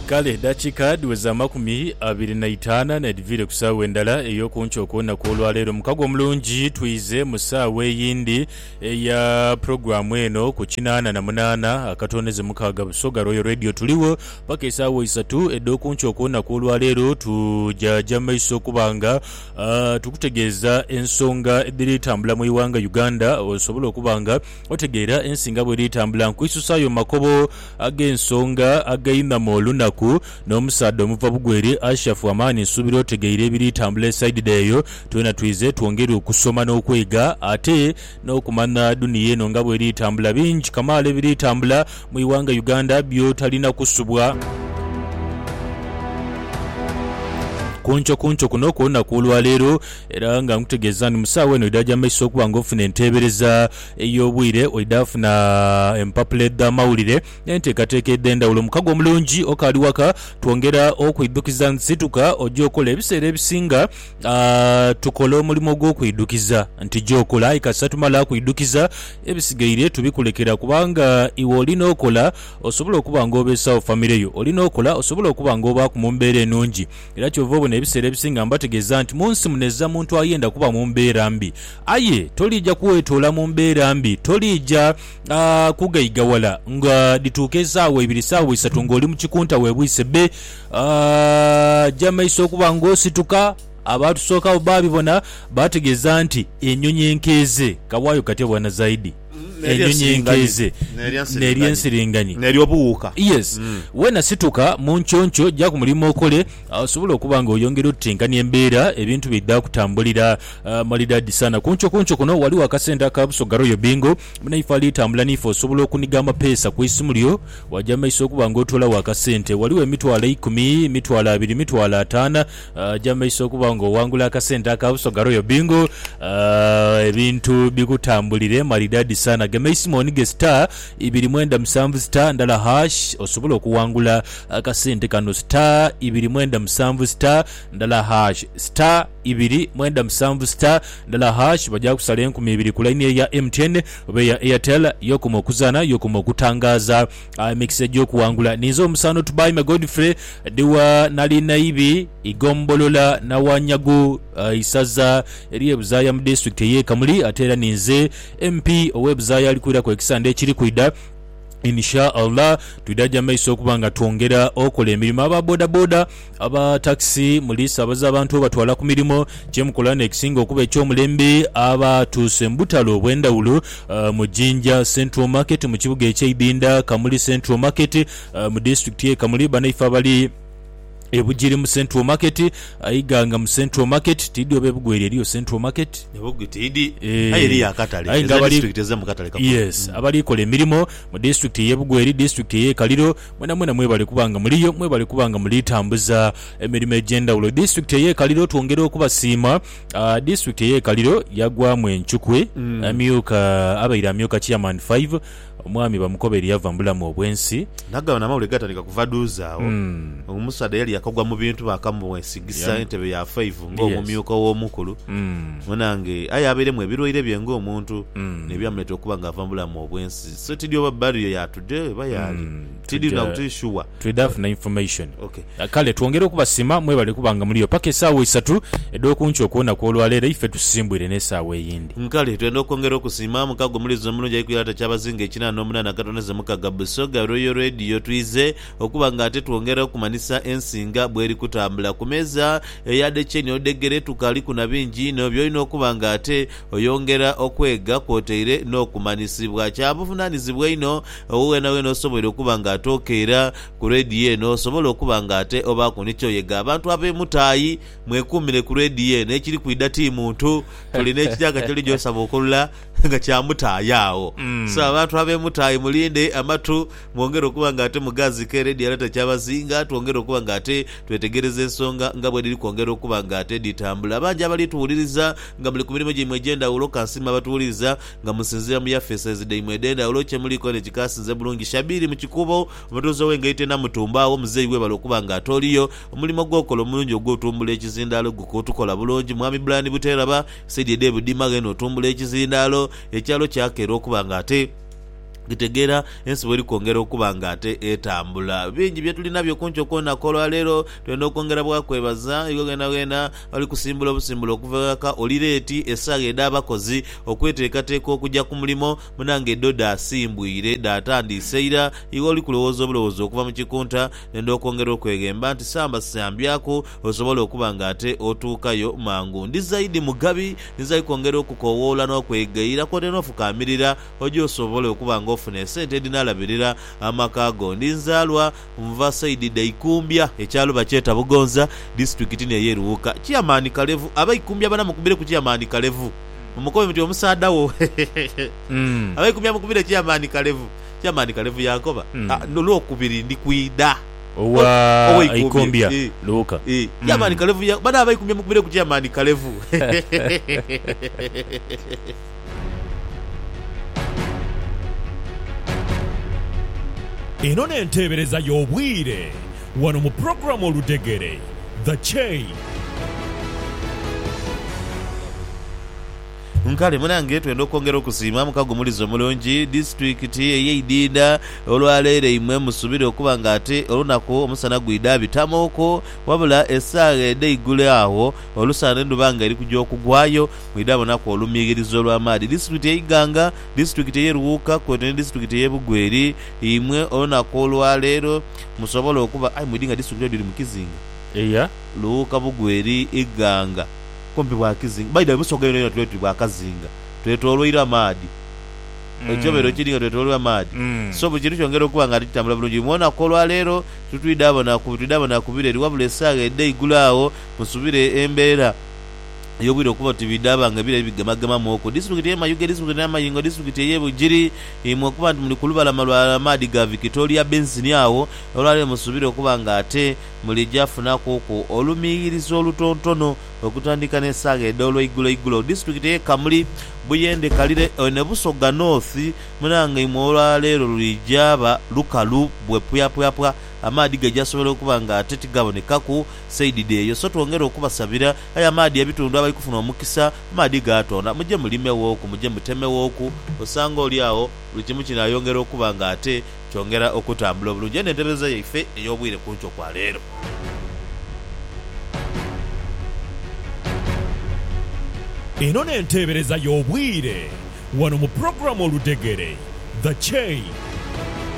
Kale edhakiika dhiweza amakumi abiri na itaana n'edhiviire ku saawa endala ey'oku nkya okw'olunaku olwa leero. Mukago omulungi twize mu saawa eyindi eya pulogulaamu eno ku kinaana na munaana akatooneze mukaaga Busoga Royal Radio. Tuligho paka esaawa isatu edh'oku nkya okw'olunaku olwa leero. Tujaja maiso okuba nga tukutegeeza ensonga edhiri tambula mu ighanga Uganda osobole okuba nga Otegeera ensi nga bw'eri etambula nkwisusaayo mu makobo ag'ensonga againhama olunaku. N'omusaadha omuva bugwere Ashafu amaani nsuubira otegeire ebiri tambula esaidide eyo. Twena twize twongere okusoma n'okwega ate n'okumanha duniya eno nga bw'eri etambula. Bingi kamaala ebiri tambula mu ighanga Uganda by'otalina kusubwa. Ku nkyo ku nkyo kuno okw'olunaku olwaleero Era nga nkutegeeza nti mu saawa eno oidha gya mu maiso okuba nga ofuna enteebereza ey'obwire, oidha funa empapula edh'amawulire n'enteekateeka edh'endhawulo. Mukago omulungi okaali waka, twongera okwidhukiza nti situka oje okole. Ebiseera ebisinga tukola omulimo gw'okwidhukiza nti ja okole, aye kasita tumala kwidhukiza ebisigaire tubikulekera kubanga iwe oli n'okola osobole okuba nga obeesawo famire yo, oli n'okola osobole okuba nga obaaku mu mbeera enungi. Era kyova obona ebiseera ebisinga mbategeeza nti mu nsi muneza muntu ayenda kuba mu mbeera mbi. Aye toliija kwetoola mu mbeera mbi, toliija kughaigawala nga dhituuka esaawa ibiri saawa isatu nga oli mu kikunta webwise bbe. Aja maiso okuba nga osituka. Abaatusookagho baabibona, baategeeza nti enyonyi enkeeze kabwayo katya bwana Zaidi? enyonyinkeize n'ery'ensiringanyi n'ery'obuwuuka. Yes. Weena situka mu nkyonkyoo, ja ku mulimo okole osobole okuba nga oyongera otutinkania embeera ebintu byeidha kutambulira. Maridadi sana. Ku nkyo ku nkyo kuno ghaligho akasente aka Busoga Royal Bingo munaife ali tambula n'ife osobola okuniga amapeesa ku isimu lyo waja mu maiso okuba nga otoolagho akasente. Ghaligho emitwalo eikumi, emitwalo abiri, emitwalo ataana. Aja mu maiso okuba nga owangula akasente aka Busoga Royal Bingo. Ebintu bikutambulire maridadi sana. Gema eisimu onige star ibiri mwenda musanvu star ndala hash osobole okuwangula akasente kano star ibiri mwenda musanvu star ndala hash star ibiri mwenda musanvu star ndala hash baja kusala enkumi ibiri ku line eyo eya MTN oba eya Airtel yokoma okuzana yokoma okutangaza. Aah emikisa egy'okuwangula ninze omusaano Tubaime Godfrey Dhiwa nali Naibi, Igombolola Nawanyagu, Isaza ery'e Buzaaya mu Disitulikiti ey'e Kamuli ate era ninze MP ow'e Buzaaya alikwiraku ekisande ekiri kwidha. In sha Allah twidha gya maiso okuba nga twongera okola emirimo aba bodaboda. Aba takisi muli saabaza abantu obatwala ku mirimo. Kye mukola n'ekisinga okuba eky'omulembe abatuuse mu butale obw'endhawulo mu Jinja Central Market mu kibuga eky'e Ibinda, Kamuli Central Market mu disitulikiti y'e Kamuli, banaife abali e Bugiri mu Central Market, Iganga mu Central Market, tiidhi oba e Bugweri eriyo Central Market? E Bugwi tiidhi aye eriyo akatale, ezo n'edisitulikiti ez'omu katale kakulu. Yes, abali kola emirimo mu disitulikiti ey'e Bugweri, disitulikiti ey'e Kaliro, Mwenamwena mwebali kuba nga muliyo, mwebali kuba nga muli tambuza emirimo egy'endhawulo. Disitulikiti ey'e Kaliro twongera okubasiima. Disitulikiti ey'e Kaliro yagwamu encukwe, amyuka abaire amyuka Chairman Five omwami Bamukobeire yava mu bulamu obw'ensi. Nagano amawulire gaatandika kuva dhuuzi agho. Omusaadha yali yakagwa mu bintu bakamwesigisa entebe ya Five ng'omumyuka ow'omukulu. Munaange aye abairemu ebirwaire bye ng'omuntu n'ebyamuleetera okuba nga ava mu bulamu obw'ensi. So tidhi oba barrier yatudhe oba yaali tidhi na buti sure. Twidha funa information. Kale twongere okubasima mwebale kuba nga muliyo paka esaawa isatu edhokunkyo okwonaku olwaleero eife tusimbwire nesaawa eyindi. Kale twenda okwongera okusiima mukago omuliiza omulungi ali kwirata kyabazinga ekinana nomunana akatoneza omukaga Busoga Royal Radio twiize okuba nga ate twongera okumanisa ensi nga bweri kutambula kumeeza eya dhekyeni odhegere tukaaliku nabingi inho byolina okuba nga ate Oyongera okwega kwotaire n'okumanyisibwa. Kya buvunaanyizibwa einho owo weenaweena osoboire okuba nga ate okeera. Ku leediyo eno osobola okuba nga ate obaaku ni ky'oyega. Abantu ab'emutaayi, mwekuumire ku leediyo eno. Ekiri kwidha ti muntu. Tuli n'ekityaaka ky'oli gy'osaba okulula nga kya mutaayi agho. So abantu ab'emutaayi mulinde amatu. Mwongere okuba nga ate mugaazike era edhirala takyabazinga. Twongere okuba nga ate twetegereza ensonga nga bwedhiri kwongera okuba nga ate dhitambula. Bangi abali tuwuliriza nga muli ku mirimo gyaimwe egy'endhawulo. Kansiime abatuwuliriza nga musinziira mu yafeeses dhaimwe edh'endhawulo. Kyemuliiko ni kikaasinze bulungi. Shabiri mu Kikuubo, omutuuze ow'engaito e Namutumba. Agho muzeeyi webale okuba nga ate oliyo. Omulimo gwokola omulungi ogw'otumbula ekizindaalo gukutukola bulungi. Mwami Brian Buteeraba, saidi edh'e Budima, ghene otumbula ekizindaalo. Ekyalo kyakera okuba nga ate. Kitegeera ensi bw'eri kwongera okuba nga ate etambula. Bingi bye tuli nabyo ku nkyo ku lunaku olwa leero. Twendha okwongera bwa kwebaza. Iwe gheenagheena oli kusimbula obusimbula okuva eghaka, oli leeti, esagha edh'abakozi okweteekateeka okuja ku mulimo, munange dho dhaasimbwire, dhaatandiise ira, iwe oli kulowooza obulowoozi okuva mu kikunta, ndenda okwongera okweghemba nti samba sambyaku osobole okuba nga ate otuukayo mangu. Ndi zaidi mugabi, ndi zaidi kwongera okukowoola n'okwegayira kwotaire n'ofukaamirira. Oje osobole okuba nga ofuna esente edhinaalabirira amaka go. Ndi nzaalwa nva saidi dha Ikumbya, ekyalo bakyeta Bugonza, disiturikiti n'eyo e Luwuka. Chairman Kalevu, Abaikumbya bana mukubire ku Chairman Kalevu. Mumukobe muti omusaadha wo. Abaikumbya mukubire Chairman Kalevu. Chairman Kalevu yankoba, Ah, n'Olwokubiri ndi kwidha. Owa Ikumbya, Luwuka. Chairman Kalevu ya, Bana Abaikumbya mukubire ku Chairman Kalevu. Eno n'enteebereza y'obwire wano mu pulogulaamu Oludhegere, The Chain. Nkale munange twenda okwongera okusiima mukagumuliza omulungi disitulikiti eye Idinda olwaleero eimwe musubire okuba nga ate olunaku omusana gwidha abitamuuku wabula esaagha edheigulo agho olusana n'endhuba nga erikuja okugwayo mwidha bonaku olumighirizo olw'amaadhi disitulikiti ey'e Iganga, disitulikiti ey'e Luwuuka kwotaire ni disitulikiti ey'e Bugweri, imwe olunaku olwa leero musobole okuba aye mwidhi nga disitulikiti edho dhiri mu kizinga. Eya Luwuuka, Bugweri, Iganga kumpi bwa kizinga. By the way, Busoga yonayona tube tuli bwa kazinga, twetoloirwa amaadhi. Ekibobeero kiri nga twetoloirwa amaadhi, so buli kintu kyongera okuba nga tikitambula bulungi. Imwe olunaku olwa leero titwidha bonaku bitwidha bonaku bireri wabula esaagha edha eigulu agho musubire embeera. ey'obwire okuba oti bidhaaba nga ebira ebigemagemamu oku disitulikiti y'e Mayuge, disitulikiti ya Mayingo, disitulikiti ey'e Bugiri, imwe okuba nti muli ku lubalama lwa maadhi ga Vikitoria Bensini agho, olwaleero musuubira okuba nga ate mulija funakuuku olumiiyirizo olutontono okutandika n'esaagha edh'olw'eiguloigulo. Disitulikiti ey'e Kamuli, Buyende, Kalire aye ne Busoga North munange imwe olwaleero lulijaaba lukalu bwe pwapwapwa, amaadhi gajasobola okuba nga ate tigabonekaku. Saidi dheeyo so twongere okubasabira. Aye amaadhi ebitundu abali kufuna omukisa amaadhi gaatonda muje mulimeghoku muje mutemeghoku osanga oli agho buli kimu kinaayongera okuba nga ate kyongera okutambula obulungi. Eno entebereza yaife ey'obwire ku nkyo kwa leero. Eno n'enteebereza y'obwire wano mu pulogulaamu Oludhegere, The Chain.